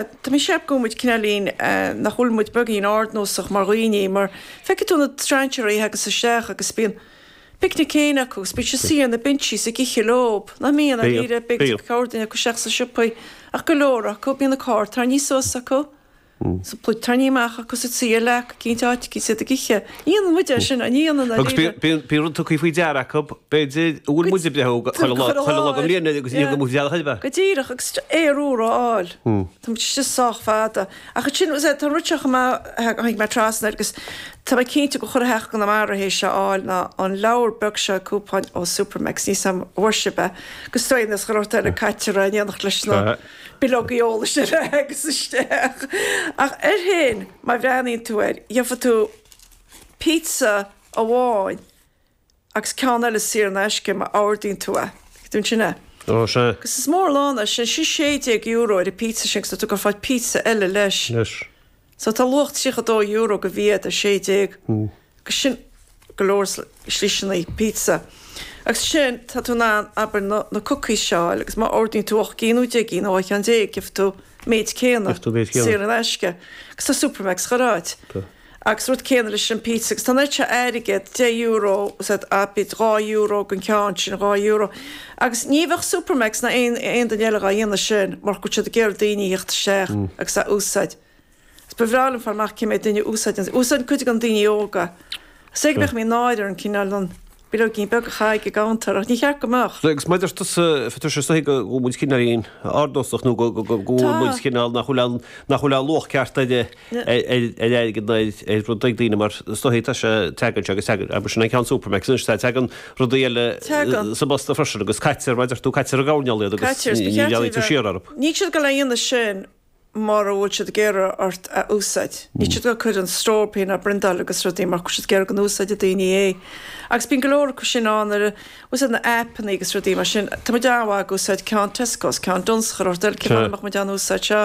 Tá mé ag ceapadh go bhfuil muid cinneáilín, nach bhfuil muid beagín ardnósach mar dhaoiní, mar feicfidh tú na strainséaraí a thagas isteach agus bíonn a bpicnic fhéin acu agus bíonn siad ina suí ar na bintsí is ag ithe leob, nach mbíonn? Ach níl, ar éigin go ngabhfadh corrdhuine acu isteach sna siopaí ach go leor acu, bíonn an carr tarrnaíthe suas acu, is an phluid tarrnaíthe amach acu is iad ina suí ar leac eicínt áit agus iad ag ithe. Déanann muid é sin, déanann Agus bhí, bhí, bhí rud tugtha faoi deara acu, b'fhéidir, a bhfuil muid ag breith orthu chuile lá, chuile lá go mbliain agus níor amuigh dealbh Shilbhe. Go díreach, agus aer úr a fháil. Tá muid istigh sách fada. Ach ansin, is é, tá rud seo chomh maith, tháinig mé trasna air agus tá mé cinnte go chuile theach i gConamara é seo a fháil ná an leabhar beag seo cúpóin ó Supermacs níl a fhios agam an bhfuair sibh é? Agus tá seans go raibh sé caite amach in éineacht leis na. bileogaí eolais ar fad agus isteach, ach an dtuigeann tú, má bhreathnaíonn tú air, gheofá tú pizza amháin agus ceann eile saor in aisce má ordaíonn tú é. Go díreach, sin é. Ó, sea. Agus is mór an lán é sin. Sin €16 ar an bpizza sin agus tá tú ag fáil pizza eile leis. Leis. So tá luach €32 go bhéile ar 16 agus sin go leor sliseanna pizza agus sin tá tú in ann abair na na cookies seo a fháil agus má ordaíonn tú ocht gcinn nó deich gcinn nó dhá cheann déag gheobh tú méid céanna Gheobh tú méid céanna. saor in aisce agus tá Supermacs chuile áit Tá. agus rud céanna leis an bpizza agus tá an oiread seo airgead deich euro as, abair dhá euro den cheann sin dhá euro Agus ní bheadh Supermac's ná aon aon duine eile dhá dhéanamh sin murach go bhfuil siad ag iarraidh daoine a theacht isteach agus é a úsáid. Is ba bhreá liom fáil amach cé mhéad duine a úsáideann é. Úsáideann cuid de na daoine óga. Is é go mbeadh muid náire orainn cineál an bileoigín beag a chaitheamh ag an gcuntar ach ní cheart go mbeadh. Agus mar a deir tusa, feictear dhom sách go bhfuil muid cineál róardnósach nó go bhfuil muid cineál nach bhfuil ann nach bhfuil luach ceart againn, ar airgead ná ar rud ag daoine mar is dóichí tá sé teagann seo agus teagann, abair sin an ceann Supermacs anois tá, teagann rudaí eile Teagann. sa bposta freisin agus caitear, mar a déarfadh tú, caitear i dtraipisí iad agus Caitear is ba cheart féachaint siar orthu. Níl siad ag gabháil á dhéanamh sin mura bhfuil siad ag iarraidh ort iad a úsáid. Níl siad ag gabháil ag cur stró orthu féin á bpriontáil agus rudaí murach go bhfuil siad ag iarraidh go n-úsáidfeadh daoine é agus bíonn go leor acu sin ann nuair a, úsáid na aipeanna agus rudaí mar sin, tá muid á-á ag úsáid ceann Tescos, ceann Dunnes chuile shórt eile, mura mbeadh muid á n-úsáid seo.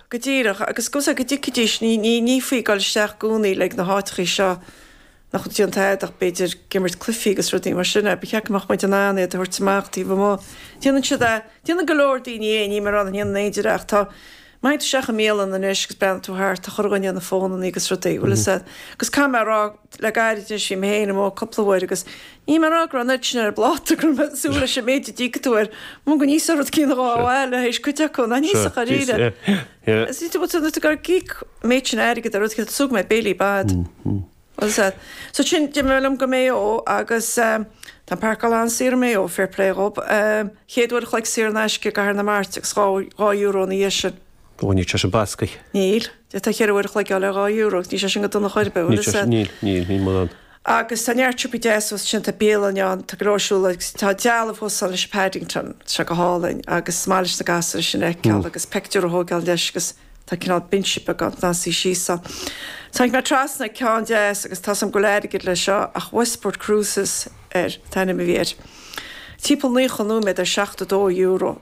Go díreach, agus agus go dtuigfidís, ní, ní, ní faoi dhul isteach i gcónaí chuig na háiteachaí seo, nach bhfuil ag déanamh tada, ach b'fhéidir ag imirt cluichí agus rudaí mar sin, eh, ba cheart go mbeadh muid in ann iad a thabhairt amach taobh amuigh, déanann siad a', déanann go leor daoiní é, níl mé a rá nach ndéanann aon duine é ach tá, má théann tú isteach i mbialann anois agus breathnaíonn tú thart, tá chuile dhuine ar na fónannaí agus rudaí, bhfuil 'fhios a'd, agus caithfidh mé a rá, Le gairid ansin bhí mé féin amuigh cúpla uair agus níl mé ag rá go raibh an oiread sin ar an bpláta go raibh mé ag súil leis an méid a d'íoc tú air, mar go ndéanfainn a oiread de chineál le hais cuid acu, ach níl a fhios agam dáiríre. Is cinnte go bhfuil tú ag ag íoc an méid sin airgid ar rud céanna, a dtabharfá béile air, by dad. Well said. So sin, d'imigh mé liom go Maigh Eo agus tá an parcáil an-saor i Maigh Eo, fair play dhób, chéad uair an chloig saor in aisce i gCathair na Mart agus dhá euro ina dhiaidh sin. Ní raibh sé sin bascaithe. Níl. Tá ceithre uair a chloig ann le dhá euro, níl sé sin go dona ar chor ar bith, bhuel is é. Níl, níl, níl mórán. Agus tá neart siopaí deasa fós ansin, tá bialann ann, tá go leor siúl agus tá dealbh fós ann leis an Paddington, tá sé go hálainn agus is maith leis na gasúir sin a fheiceáil agus pictiúr a thógáil leis agus tá cineál binse beag ann chun suí síos ann. Tháinig mé trasna ar cheann deas agus tá suim go leor airgid leis seo ach Westport Cruises air, an t-ainm a bhí air. Timpeall naocha nóiméad ar seachtó dó euro.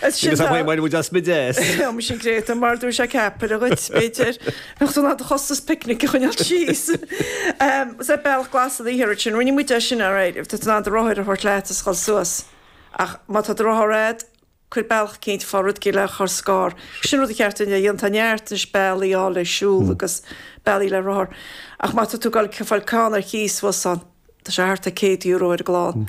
As sin Agus tá- bhain muid as muid é! Seo mar sin Greta, mar dúirt sé ceapaire dhuit, b'fhéidir nach tú ná do chostas picnic a choinneáil síos. Em, Is é bealach glas a dhíth orat sin, rinne muid é sin ar éileamh, tá tú in ann do rothar a thabhairt leat is dhul suas. Ach má tá do rothar a'd, cuir bealach eicínt fá rud éigin le chur scár. Sin rud a cheart dúinn a dhéanamh, tá neart anois bealaí ann le siúl agus bealaí le rothar. Ach má tá tú ag fáil ceann ar cíos suas ann, tá sé thart ar chéad euro ar an gclann.